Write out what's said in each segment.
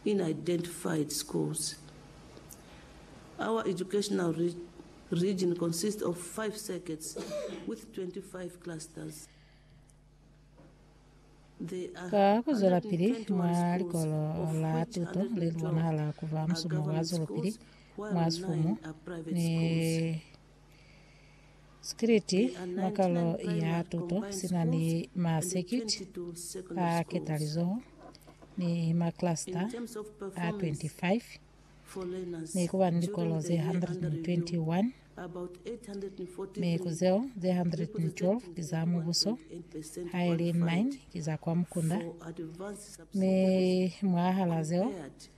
in identified schools. Our educational region consists of five circuits with 25 clusters. Ka ku zwelapili mwa likolo la tuto le li bonahala ku ba musumo wa zwelopili mwa sifumu ni Sikiliti mwa kalo ya tuto sina ni masekiti a ketalizoho ni maklasta a 25 mi kuba ni likolo ze 121 mi ku zeo ze 112 ki za mubuso haili 9 ki za kwa mukunda mi mwahal'a zeo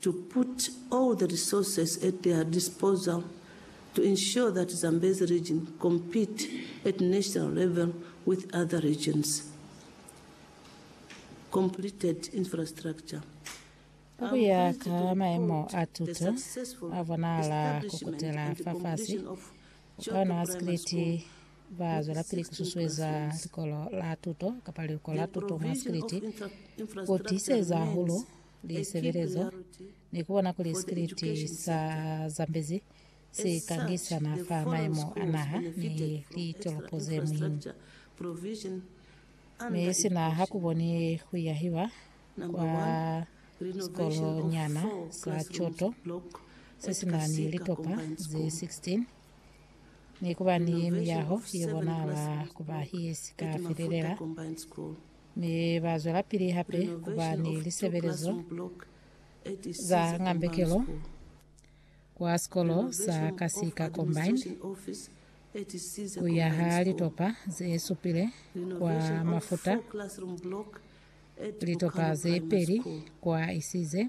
to put all the resources at their disposal to ensure that Zambezi region compete at national level with other regions. Completed infrastructure Ka ku ya ka maemo a tuto a bonahala ku kutela fafasi, bukana wa sikiliti ba zwelapili ku susueza likolo la tuto kapa liluko la tuto mwa sikiliti ku tiiseza hahulu lisebelezo ni kubona kuli sikiliti sa Zambezi si kangisana fa maimo a naha ni litolopo ze muhimu. Mi sina ha kuboni kuyahiwa kwa sikolonyana sa Choto se sina ni litopa ze 16 ni kuba ni miyaho ye bonala kuba ye si ka felelela Mi ba zwelapili hape ku ba ni lisebelezo za ngambekelo kwa sikolo sa Kasika Combined, ku yaha litopa ze supile kwa Mafuta, litopa ze peli kwa Isize,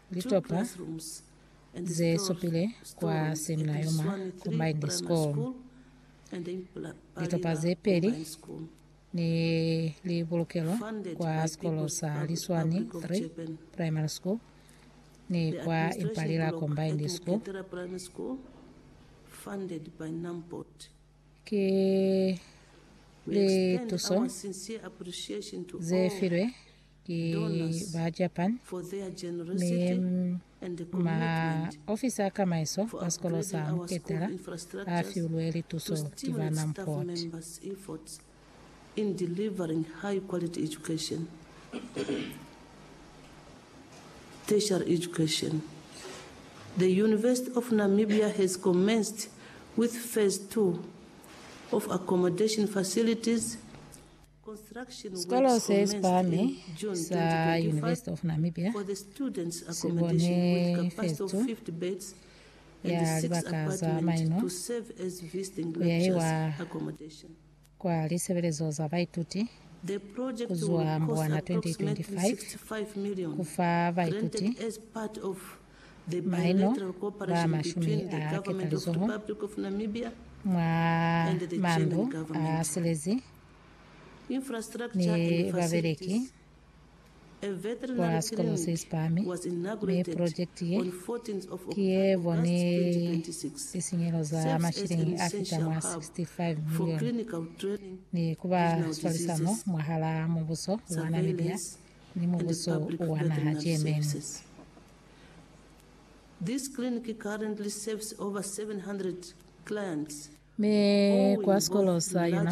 Litopa ze supile kwa Semina Yoma Combined School, litopa ze peli ne li bulukelwa kwa sikolo sa Liswani 3 Primary School ni kwa Impalila Combined School. Ki lituso ze filwe ki ba Japan, mi ma ofisa a kamaiso a sikolo sa Muketela a fiulwe lituso ki ba Namport. Sikolo se si pahami sa University of Namibia si bone festo ya libaka za maino ku yahiwa kwa lisebelezo za baituti ku zwa Mbwana 2025 ku fa baituti maino ba mashumi a ketalizoho mwa mandu a silezi mi babeleki kwa sikolo se si pahami, mi project ye ki ye boni lisinyehelo za mashilingi a fita mwa 65 million ni ku ba swalisano mwahala mubuso wa Namibia ni mubuso wa naha Germany. Mi kwa sikolo sa yona.